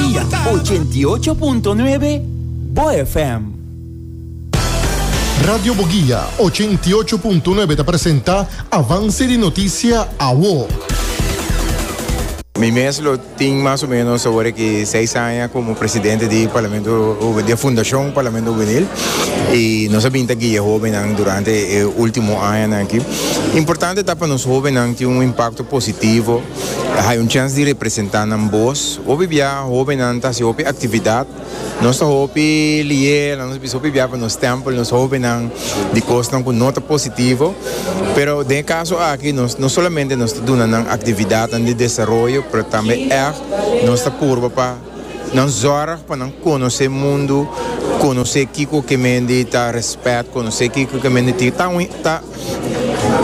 Dia ochenta i ocho punto nuebe, bo FM. Radio Boguia ochenta i ocho punto nuebe ta presenta Avance di Noticia Awo. Mi mes lo tin mas o menos ahora que seis aña como presidente di Parlamento di Fundacion Parlamento Juvenil y nos a binta guia jovennan durante e ultimo añanan aki. Importante ta pa nos jovennan tin un impacto positivo Hay un chance di representa nan bos. Hopi bia hobennan ta haci hopi actividad. Nos ta hopi leer, nos ta bisa hopi bia pa nos stempel nos hobennan di cosnan cu no ta positivo. Pero den e caso aki nos no solamente nos ta duna nan actividadnan di desaroyo, pero tambe echt nos ta purba pa nan zorg pa nan conoce mundo, conoce kico ke mendi ta respet, conoce kico ke mendi tin ta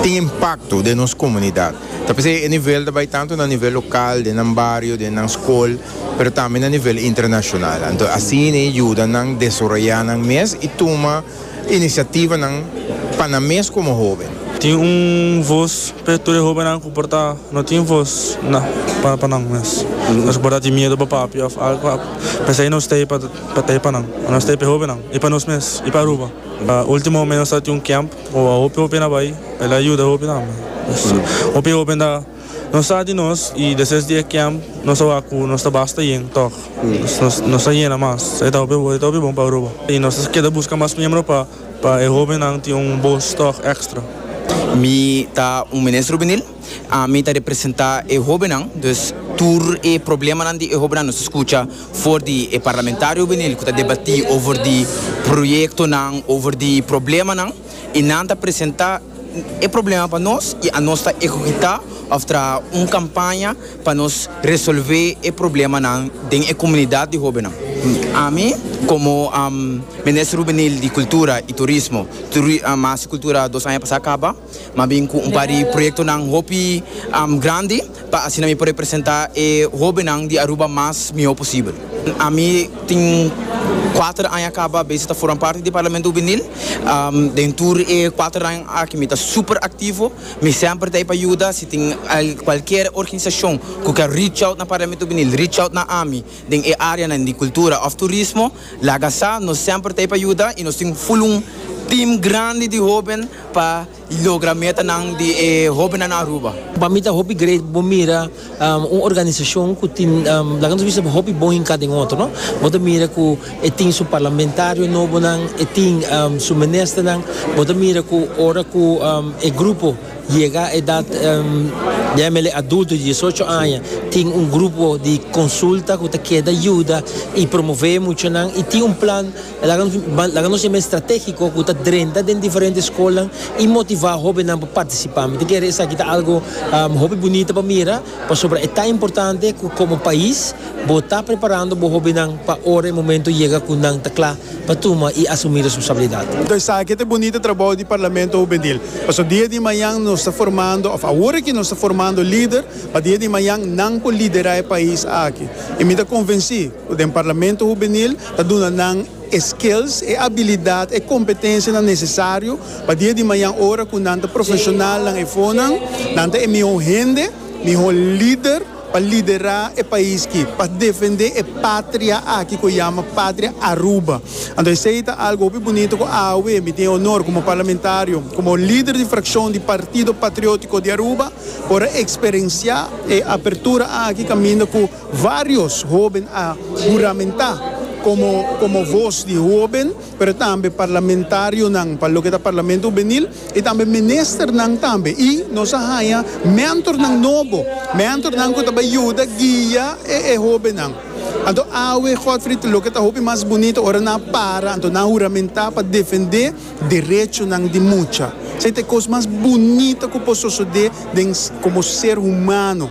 tin impacto den nos comunidad. Ta p'esei e nivel ta bai tantu na nivel lokal, den nan bario, den nan skol, pero tambe na nivel internashonal. Anto asin e yuda nan desaroyá nan mes i tuma inisiativanan pa nan mes komo hóben. Tin un vos p'e tur e hóbennan ku por ta no tin vos na para pa nan mes. Nos ku por ta tin miedu pa papia òf algu, p'esei nos ta ei pa ta ei pa nan. Nos ta ei p'e hóbennan i pa nos mes i pa Aruba. Último mes nos ta tin un kèmp Bo a hopi hopi na bai, el a yuda hopi tambe. Hopi hopi ta no sa di nos y deses di e camp nos a wak cu nos ta basta yen toch. Nos a yena mas. E ta hopi bon pa Aruba y nos ta keda busca mas miembro pa pa e hobennan tin un bos toch extra. Mi ta un minister hubenil. Ami ta representa e hobennan, dus tur e problemanan di e hobennan nos a skucha for di e parlamentario binil ku ta debatí over di proyektonan, over di problemanan i nan ta presenta e problema pa nos i anos ta ehekutá òf traha un kampaña pa nos resolvé e problemanan den e komunidat di hobennan. Ami komo Minister Hubenil di Kultura i Turismo, tur Masi Kultura dos aña pasá kaba. M'a bin cu un par di proyectonan hopi grandi pa asina mi por representa e hobennan di Aruba mas miho posibel. Ami tin cuater aña caba besi ta forma parti di Parlamento Hubenil. Den tur e cuater aña aki mi ta super activo. Mi semper ta ey pa yuda. Si tin cualkier organisacion cu kier reach out na Parlamento Hubenil, reach out na ami. Den e áreanan di kultura òf turismo, laga sa nos semper ta ei pa yuda i nos tin full un tim grandi di hóben pa logra metanan di e hóbennan na Aruba. Pa mi ta hopi great bo mira un organisashon ku tin, laga nos bisa, hopi bon hinká den otro, no. Bo ta mira ku e tin su parlamentario nobonan, e tin su ministernan, bo ta mira ku ora ku e grupo. Yega edat yamele adulto di diesocho aña tin un grupo di konsulta ku ta keda yuda i promové muchanan i tin un plan laga nos yama estratégiko ku ta drenta den diferente skolnan i motivá hóbennan pa partisipá. Mi ta kere esaki ta algu hopi bunita pa mira. Pasobra e ta importante cu como pais bo ta preparando bo hobennan pa ora e momento yega cu nan ta cla pa tuma y asumi responsabilidad. Enton esaki ta e bunita trabou di Parlamento Hubenil. Paso dia di mañan nos ta formando, of awor aki nos ta formando lider pa dia di mañan nan por lidera e pais aki. Y mi ta convenci. Den Parlamento Hubenil ta duna nan e skills, e abilidat, e kompetensianan nesesario pa dia di mañan ora ku nan ta profeshonalnan e fonan, nan ta e mihó hende, mihó lider pa liderá e pais ki, pa defendé e patria aki ku e yama Patria Aruba. Anto esei ta algu hopi bunito ku awe mi tin e onor komo parlamentario, komo lider di frakshon di Partido Patriótiko di Aruba por a eksperensiá e apertura aki kaminda ku Varios hoben a huramentá komo komo vos di hoben, pero tambe parlamentarionan pa loke ta Parlamento Hubenil i tambe ministernan tambe. I nos a haña mentornan nobo, mentornan ku ta bai yuda guia e e hobennan. Anto awe, Godfrid, loke ta hopi mas bunito ora nan a para, anto nan a huramentá pa defendé derechonan di mucha. Esei ta e kos mas bunito ku por sosodé den komo ser humano.